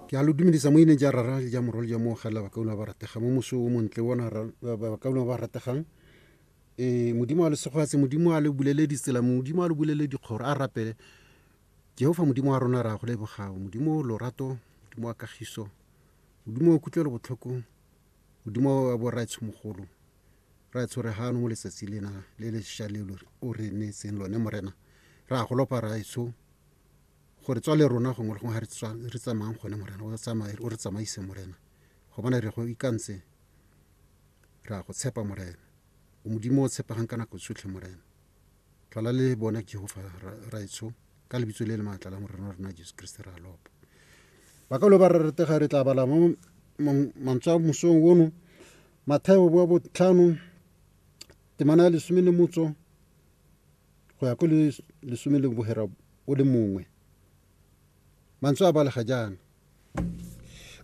ke a lo dumedisa mo ineng ja rara le ja morwa le ja moogela bakauna ba rategang mo moso o montle bona bakauna ba rategang um modimo a lesegoatse modimo a le bulele ditsela modimo a le bulele dikgoro a rapele jehofa modimo wa rona ra go lebogao modimo lorato modimo wa kagiso modimo wa kutlwelo botlhoko modimo wa boraetshomogolo ra tshwere gano mo letsatsi lena le le sha le o re neetseng lone morena ra golopa raetsho gore tswa le rona gongwe le gongwe ga re tswa re tsamayang gone morena o tsamaye o re tsamaise morena go bona re go ikantse re a go tshepa morena o modimo o tshepegang ka nako tsotlhe morena tlala le bona jehofa raetsho ka lebitso le le maatla la morena wa rona jesu kriste re a lopa ba ka lo ba re retega re tla bala mo mantswe a mosong ono matheo boa botlhano temana ya lesome le motso go ya ko le lesome le bohera o le mongwe mantswe a balega jaana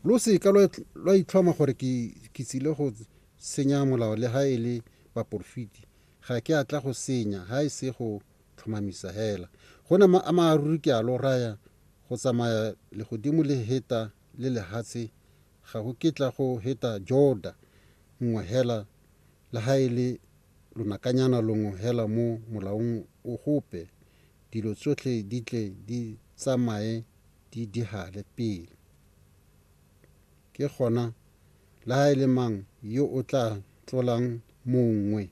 lo seka lwa itlhoma gore ke tsile go senya molao le ga e le baporofiti ga ke a tla go senya ga e se go tlhomamisa hela go na a maaruri ke a lo raya go tsamaya legodimo le heta le lehatshe ga go kitla go heta jorda nngwe hela le ha e le lonakanyana longwe hela mo Molaong o gope, dilo tsotlhe di tle di tsamaye di dihale pele. Ke gona, le ha e le mang yo o tla tlolang mongwe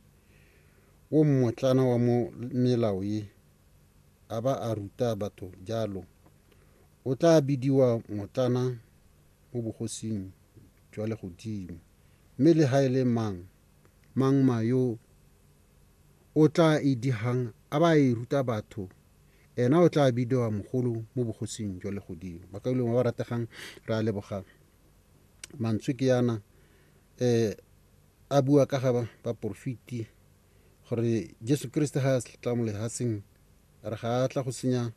o mmotlana wa mo melao ye, a ba a ruta batho jalo, o tla bidiwa motlana mo bogosing jwa legodimo. Mme le ha e le mang, mang ma yo o tla e digang a ba a e ruta batho, ena o tla bidiwa mogolo mo bogosing jwa legodimo. Bakaulengwe ba ba rategang, re a leboga mantswe ke yana um a bua ka ga baporofeti gore Jesu Keresete ga a tla mo lehatsheng a re ga a tla go senya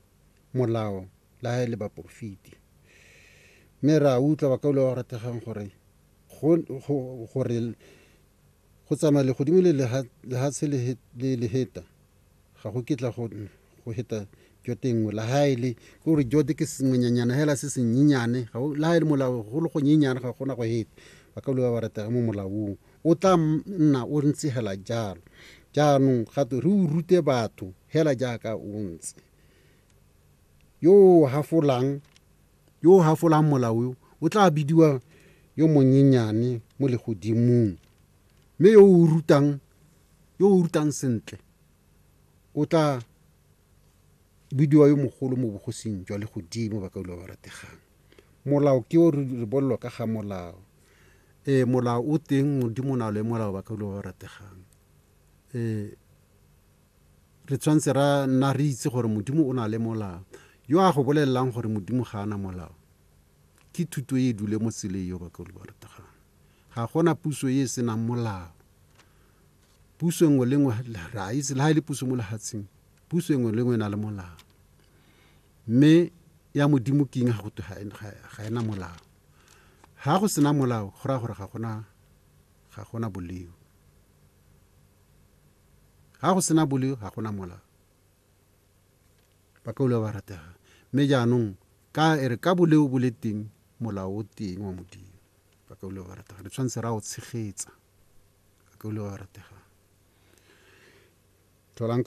molao le ha e le baporofiti. Mme re a utlwa bakaulwa ba ba rategang gore gore go tsamaya legodimo le lehatshe le leheta ga go kitla go go heta jo tengwe la ha e le ke gore jote ke sengwenyanyana hela se senyenyane la ha e le molao go le go nyenyane ga gona go heta ba ka ba ratega mo molaong o tla nna o ntse hela jalo jaanong gato re o rute batho hela jaaka o ntse yo o hafolang yo o hafolang molao o tla bidiwa yo monyenyane mo legodimong mme yo o rutang yo o rutang sentle o tla bidiwa yo mogolo mo bogosing jwa legodimo ba ka ba rategang molao ke o re bolelwa ka ga molao ee molao o teng modimo na le molao ba ka ba rategang ee re tshwanetse ra nna re itse gore modimo o na le molao yo a go bolelelang gore modimo ga ana molao ke thuto e e dule mo tseleng yo ba ka ba rategang ga gona puso e e senang molao Puso engwe le engwe re a itse le ha e le puso mo lehatsheng puso engwe le engwe e na le molao mme ya modimo keng ga gotwe ga ena molao ga go sena molao go raya gore ga gona ga gona boleo ga go sena boleo ga gona molao ba ka ule ba ratega mme jaanong ka e re ka boleo bo le teng molao o teng wa modimo ba ka ule ba ratega re tshwanetse ra o tshegetsa a ka o le wa go rategang tlholang